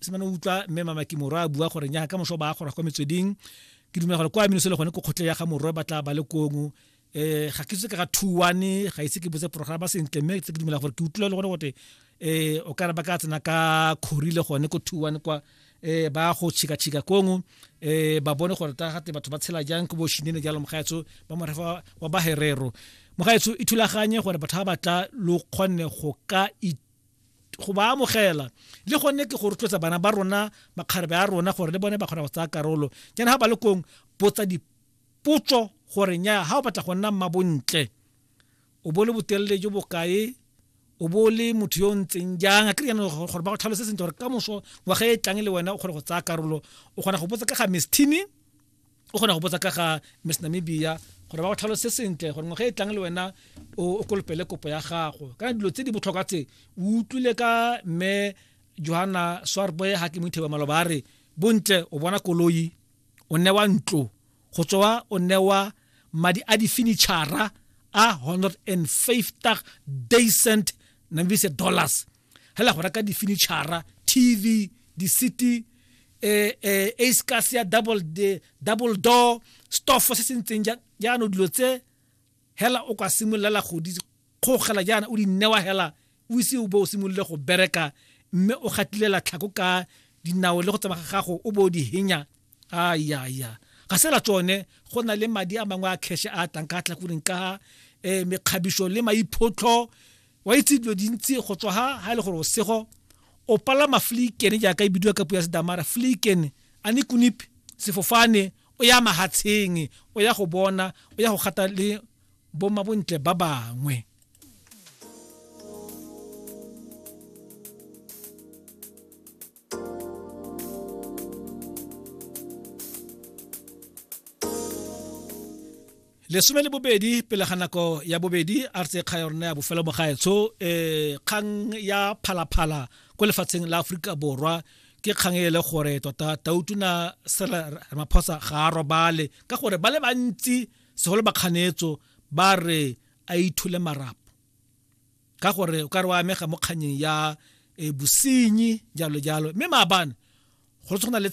se mane o utlwa mme mamaki morwa a bua gore nyaga ka moso ba a gora kwa metsweding ke dumela gore kwa minoso le gone ko kgotlhe ya ga morwa ba tla ba le kongo um eh, ga ke itse ka ga two one ga ise ke botse programa sentle mme tse ke dumela gore ke utlwile le gone gote um o kare ba ka tsena ka kgori le gone ko two one kwa um ba go tšhikatšhika kongo um eh, ba bone gore ta gate batho ba tshela jang ke bošinene jalo mogaetso ba morefa wa baherero mogaetso e thulaganye gore batho ba batla lo kgonne go ka go ba amogela le gone ke go rotloetsa bana ba rona makgarebe a rona gore le bone ba kgona go tsaya karolo jaana ga ba le kong botsa dipotso gore nya ga o batla go nna mma bontle o bo le botelele jo bokae o bo le motho yo o ntseng jang a kry yanong gore ba go tlhalose sentle gore ka moso ngwaga e tlang le wena o kgone go tsaya karolo o kgona go botsa ka ga mistini o kgona go botsa ka ga miss namibia gore ba go tlhalose sentle gore ngwaga e tlang le wena o kolopele kopo ya gago kana dilo tse di botlhokwa tse o utlwile ka mme johanna swarboy ga ke moitheba maloba a re bontle o bona koloi o newa ntlo go tswa o newa madi a difinitšhara a 150 decent namibise dollars hela go reka difinitšhara tv di-city eh, eh, a scas ya double, de, double door stoffo se se ntseng jaano dilo tse hela o ka simololela go di kgogela jaana o di newa hela o ise o bo o simolole go bereka mme o gatilela tlhako ka dinao le go tsamaya gago o bo o di henya a ya ya ga sela tsone go na le madi a mangwe a cash a tlang ka tla kureng ka eh mekgabiso le maiphotlho wa itse dilo dintsi go tswa ha ha e le gore o sego o palama fliken jaaka e bidiwa ka puo ya sedamara fliken a ne kunip sefofane o ya mahatsheng o ya go bona o ya go gata le bomma bontle ba bangwe lesome le bobedi pele ga nako ya bobedi a re tse kga ya rona ya bofelo mogaetsho um eh, kgang ya phalaphala ko lefatsheng la aforika borwa ke kgang e le gore tota tautuna sela ramaphosa ga a robale ka gore ba le bantsi segolo bakganetso ba re a ithule marapo ka gore o ka re wa amega mo kganyeng ya e, bosenyi jalo jalo mme maabane go tshwana le